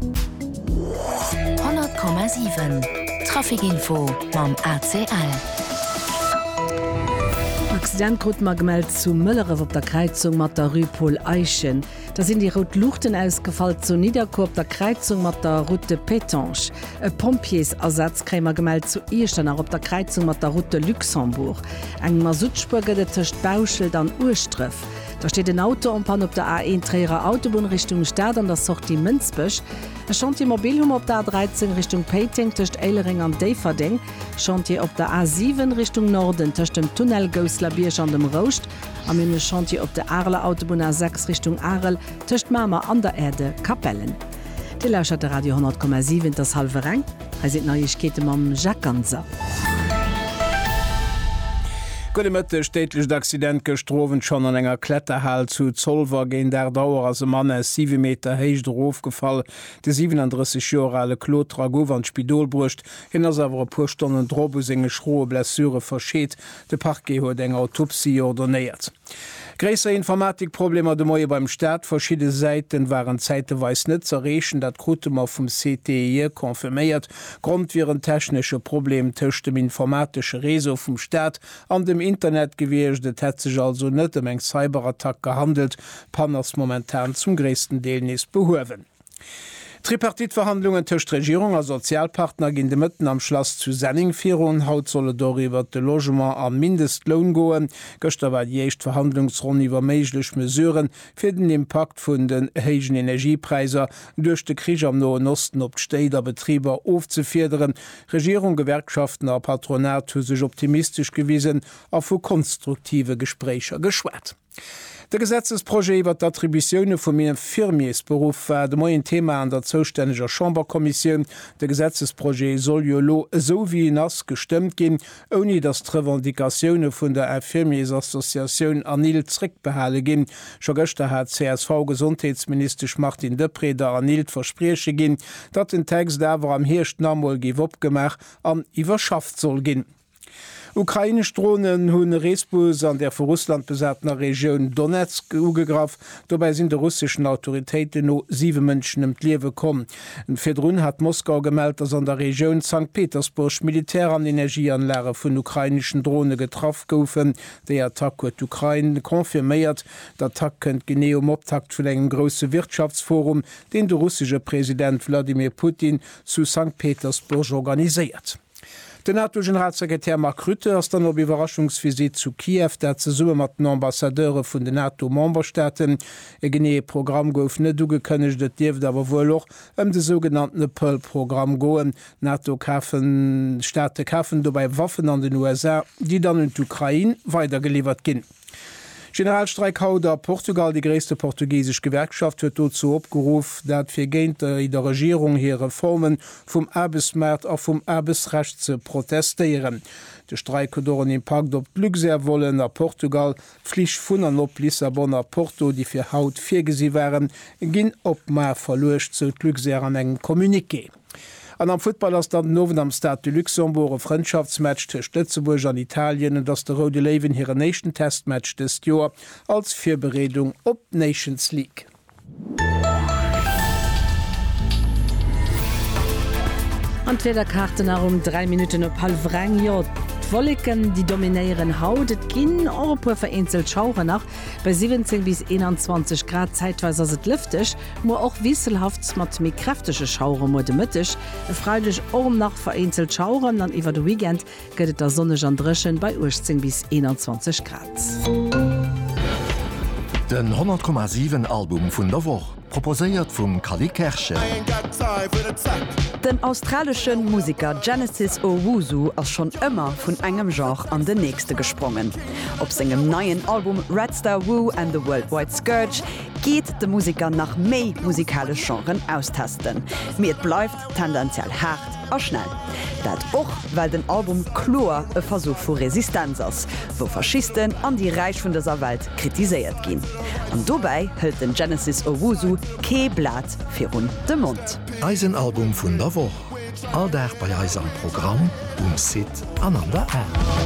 100,7 Traficinfo mam ACL. Accident krute mer gemellt zu Mëlleref op der Kräizung mat der Rue Paul Eyschen. Da sinn déi rout Luuchten ausgefall. Zu Nidderkuer op der Kräizung mat der Route de Pétange. E Pompjeesasaz kréie mer gemellt zu Iechternach op der Kräizung mat der Route de Luxembourg. Eng Masuttspuer gëtt et tëscht Bauschelt an Ueschdref. Da steet en Auto en Panne op der A1 Tréierer Autobunn Richtung Stad an der Sortie Mënsbech. E Chantier mobil hu mer op der A13 Richtung Péiteng tëscht Éilereng an Déifferdeng. Chantier op der A7 Richtung Norden tëscht dem Tunnel Gousslerbierg an dem Rouscht. A mir hunn e Chantier op der Areler Autobunn A6 Richtung Arel tëscht Mamer an der Aire de Capellen. Dir lauschert de Radio 10,7, et ass hallwer eng, hei sinn d'Neiegkeete mam Jacques Ganser. Gudde Mëtteg, Déidlecht Accident gëschter Owend schonn an enger Kletterhal zu Zolwer. Géint 8 Auer ass e Mann aus 7 Meter Héicht erofgefall. De 37 Joer ale Kloterer gouf an d'Spidol bruecht. Hien ass awer e puer Stonnen drop u senge schroe Blessure verscheet. De Parquet huet eng Autopsie ordonéiert. Gréisser Informatikproblemer de Moie beim Staat, verschidde Säite waren zäiteweis net z'erreechen, dat krute mer vum CTIE confirméiert. Grond wier en technesche Problem tëscht dem informatesche Réseau vum Staat an dem Internet gewiescht. Et hätt sech also net ëm eng Cyberattack gehandelt. D'Pann ass momentan zum gréissten Deel nees behuewen. D'Tripartite-Verhandlungen tëscht Regierung a Sozialpartner ginn de Mëtten am Schlass zu Senneng virun. Haut soll et och iwwert de Logement a Mindestloun goen. Gëschter war déi éischt Verhandlungsronn iwwer méiglech Mesuren, fir den Impakt vun den héijen Energiepräisser duerch de Krich am Noen Osten op d'Stéit a Betriber ofzefiederen. Regierung, Gewerkschaften a Patronat hu sech optimistesch gewisen a vu konstruktive Gespréicher geschwat. De Gesetzesprojet iwwert d'Attributioune vum Infirmiersberuff war de Moien Thema an der zoustänneger Chamberkommissioun. De Gesetzesprojet soll jo elo, esou wéi en ass, gestëmmt ginn, ouni datt d'Revendicatioune vun der Infirmiersassociatioun ANIL zréckbehale ginn. Scho gëschter hat d'CSV-Gesondheetsministesch Martine Deprez der ANIL d'Versprieche ginn, datt den Text awer am Hierscht namol géif opgemaach an iwwerschafft soll ginn. Ukrainesch Dronen hunn e Reesbus an der vu Russland besatener Regioun Donezk ugegraff. Dobäi sinn de russeschen Autoritéiten no siwe Mënschen ëm d'Liewe komm. Virdrun hat Moskau gemellt, datt an der Regioun Sankt Petersburg Militär an Energieanlage vun ukraineschen Drone getraff goufen. Déi Attack huet d'Ukrain confirméiert. D'Attack kënnt genee um Optakt vun engem grousse Wirtschaftsforum, deen de russesche President Wladimir Putin zu Sankt Petersburg organiséiert. Den NATO-Generalsekretär Mark Rutte ass dann op Iwwerraschungsvisitt zu Kiew, dat zesumme mat den Ambassadeure vun den NATO-Memberstaaten. E geneeë Programm gouf net ugekënnegt, et dierft awer wuel och ëm de sougenannte Pearl-Programm goen. D'NATO-Staate kafen dobäi Waffen an den USA, déi dann un d'Ukrain weidergeliwwert ginn. Generalstreik haut a Portugal, Déi gréisste portugisesch Gewerkschaft huet dozou opgeruff, dat fir géint déi der Regierung hir Reforme vum Aarbechtsmaart a vum Aarbechtsrecht ze protestéieren. De Streik huet och en Impakt op d'Luxair-Vollen a Portugal, D'Flich vun an op Lissabon a Porto, déi fir haut virgesi waren, ginn op mar verluecht, sou d'Luxair an engem Communiqué. An am Futtball ass dann den Owend am Stade de Luxembourg e Frëndschaftsmatch tëscht Lëtzebuerg an Italien. Et ass de Roude Léiwen hiren éischten Testmatch dëst Joer als Virbereedung op d'Nations League. An d'Wiederkaarten nach um 3 Minutten op hallefreng, jo d'Wolleken déi dominéieren haut, et ginn och e puer vereenzelt Schaueren nach bei 17 bis 21 Grad. Zäitweis ass et lëfteg. Muer och wiesselhaft mat méi kräftege Schauere muer de Mëtteg. E Freideg och nach vereenzelt Schaueren an iwwer de Weekend gëtt et da sonneg an dréchen bei 18 bis 21 Grad. Den 100 Komma 7 Album vun der Woch, proposéiert vum Callie Kerschen. Den australesche Museker Genesis Owusu ass schonn ëmmer vun engem Genre an den nächste gesprongen. Op sengem neien Album Red Star Woo and the Worldwide Scourge geet de Museker nach méi musikalesch Genren austesten, mee et bleift tendenziell haart a schnell. Dat och well den Album kloer e Versuch vu Resistenz ass, wou Faschisten an déi Räich vun dëser Welt kritiséiert ginn. An dobäi hëlt den Genesis Owusu kee Blat virun de Mond. Eisen Album vun der Woch, all Dag bei eis am Programm, um Site an an der App.